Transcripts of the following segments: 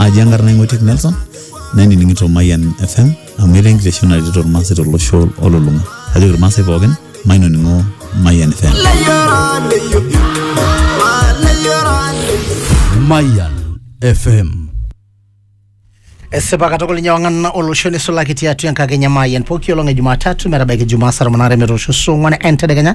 aji enkarna ing'oitiek nelson nainining'ito mayian fm amu etaa enkitesheni naretito irmaasai tolosho olulung'a kajoki irmaasai pookin mainoning'o mayian fm Mayan FM. esipa katukul ninye wang'ana olosho nisulaki tiatua enkakenya mayian pooki olong e jumatatu metabaiki jumaa saa tomon aare metoosho saa ong'wan entedekenya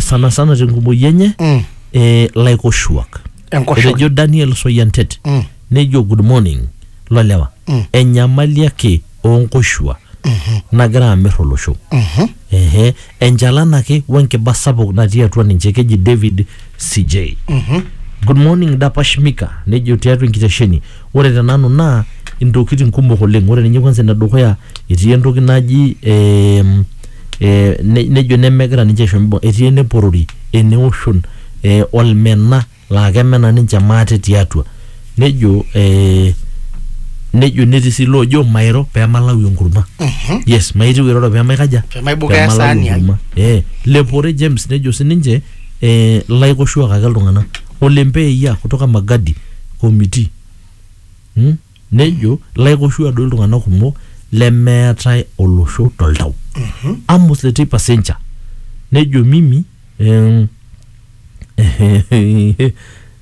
sana sana tenkumoi enye mm. eh, laikoshuak Enkoshoke. etejo Daniel Soyantet Mm. nejo good morning lolewa Mm. enyamali ake oonkoshua nagira amir olosho Mhm. ehe enchalan ake wenkiba sapuk natii atua ninche keji David CJ Mhm. good morning dapash mika nejo tiatua enkitesheni ore tenanu naa intokitin kumok oleng ore ninye kwanza enedukuya etii entoki naji eh, eh, ne- nejo nemegira ninche aisho mibung etii eneporori eneoshon eh, olmena laa kemena ninche maate tiatua nejo eh, nejo netii sii loojo mairo pemalau enkurma yes maitiu iroro pemaikaja Pemaibukoo pemalau esaani ai. enkurma eh, lepore James nejo sininche eh, laikoshuak ake iltung'anak ole mpeia kutoka magadi committee hmm? Nejo, Laikoshu aadou iltung'ana kumok lemeetae olosho to ltau. Amos le teipa Sencha. Nejo, Mimi, em,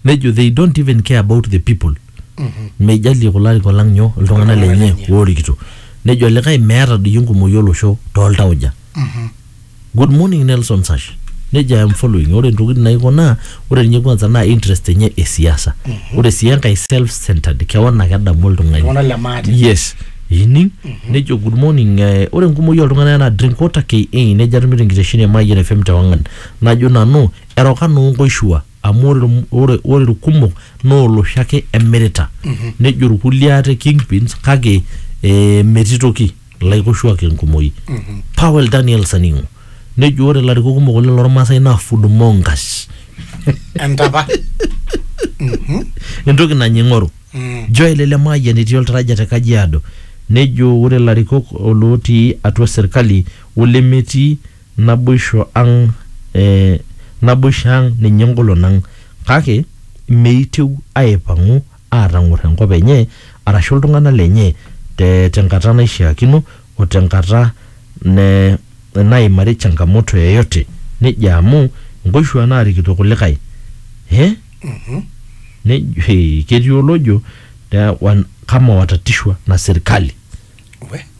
nejo, they don't even care about the people. Meijalie kulo arikok lang nyoo iltung'ana lenye oorikito. Nejo likae, meeta doi enkumoi olosho too ltauja. Good morning Nelson Sash. Neja I am following. Ore ntokitin naiko naa ore ninye kwanza naa interest enye e siasa. Ore sii enkae self centered kewan ake edamu oltung'ani. Iltung'anak le maate. Yes. Ining? Nejo good morning eh, ore enkumoi oltung'anak naa drink water KE nejo atumito enkitesheni e Mayian FM te Wang'an. Najo nanu eroka noo nkoishua amu ore ilm- ore ore ilkumok naa olosho ake emirita. Nejo ilkulie ate kingpins kake eh, metii toki. ilaikoshuak enkumoi Powell Daniel Saning'u nejo ore ilarikok kumok oleng lormaasai naa fudmongas entapa entoki nanya ing'oru Mm. Joel Lemayian etii oltaraja te Kajiado nejo ore ilarikok olootii atua serkali olemetii naboisho ang eh, naboisho ang ninye engolon ang kake meitieu aipang'u aatang'or enkop enye arashu iltung'ana lenye te tenkata naishiakino o tenkata ne naimari changamoto yeyote nejo amu nkoishua naarikito kulikae eh? Nejo, eh, ketii olojo eh, wan- kama watatishwa na serikali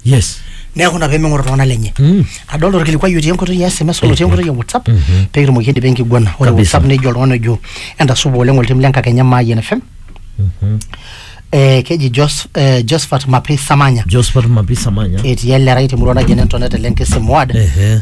yes neeku ina pemeng'or iltung'anak lenye Mm. adolta orkilikuai otii enkoitoi ya sms olotii enkoitoi ya whatsapp Mhm. pee kitumoki aidipa enkiguana ore Kabisa. whatsapp nejo oltung'ani ojo entasupa oleng oltim le nkakenya maayian fm Mhm. eh, keji Jos, eh, josphat mapi samanya josephat mapisa manya etii ele rai temurua naji enentonete le nkisimuad Ehe.